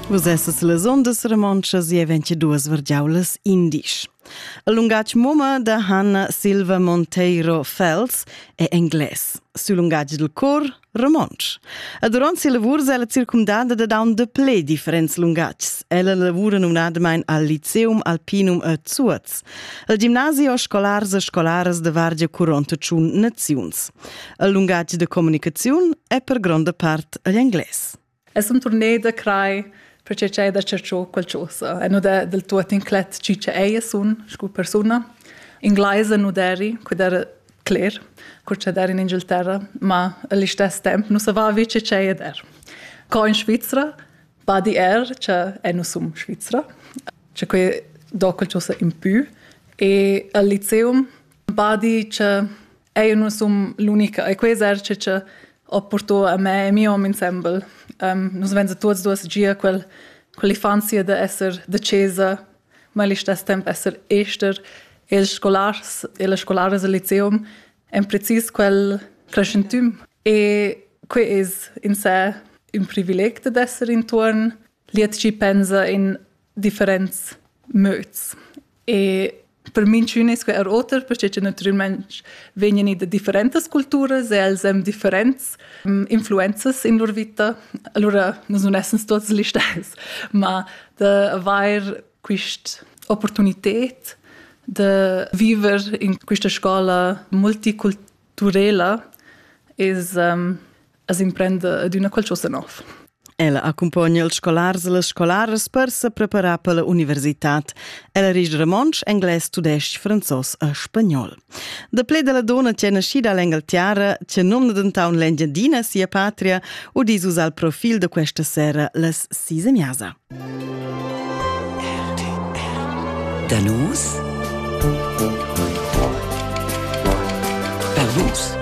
Vus essas las ondas romontschas e ventiduas vergiaulas indisch. Il lungatg mumma da Hanna Silva Monteiro Fels è englais. Sul lungatg del cor, romontsch. E durant ses lavurs è ella circumdada da daun de ple differents lungatgs. Ella lavura numnadamain al Liceum Alpinum a Zuoz, al gimnasio scolars e scolaras de Vargia curonta tschun naziuns. Il lungatg de comunicaziun è per gronda part agl englais. Es un tournée da crai perché c'è da cerciò qualcosa. E nu da del tuot inclet chi che ei sun scu persuna. Ingleise nu deri, quid era cler, cur che der in Inghilterra, ma allo stesso tempo non saveva che c'è e der. Co in Svizzera, badi er, che è non sum Svizzera, che quei do qualcosa in più e al liceum badi che eu nu sun l'unica e queza che ho purtà a me e mio hom insembel. Um, nus venza tuots duos gia quel, quell'infanzia da esser da chesa, ma allo stesso tempo esser ester e ils scolars e le scolares al liceum en precis quel crescentüm. E que es in sé ün privileg da esser intuorn Lietschi pensa in differents möds. E per minchün es que er oter, perche che natüralmaing vegnan i da differentas culturas e els haben differents um, influenzas in lur vita. Allora nus nun essens tuots gli stess, ma da avair quist opportunited de viver in questa scola multiculturela is um, as imprenda adüna qualchosa nov. Ella accumpogna ils scolars e las scolaras per se preparar per l'universitad. Ella ris romontsch, englais, tudesc, franzos e spagnol. Da ple della dona che è nascida all'Engaltiara, che nomna dentaun l'Engiadina sia patria, udis us al profil de questa sera las Sisemiasa. Danus per vus.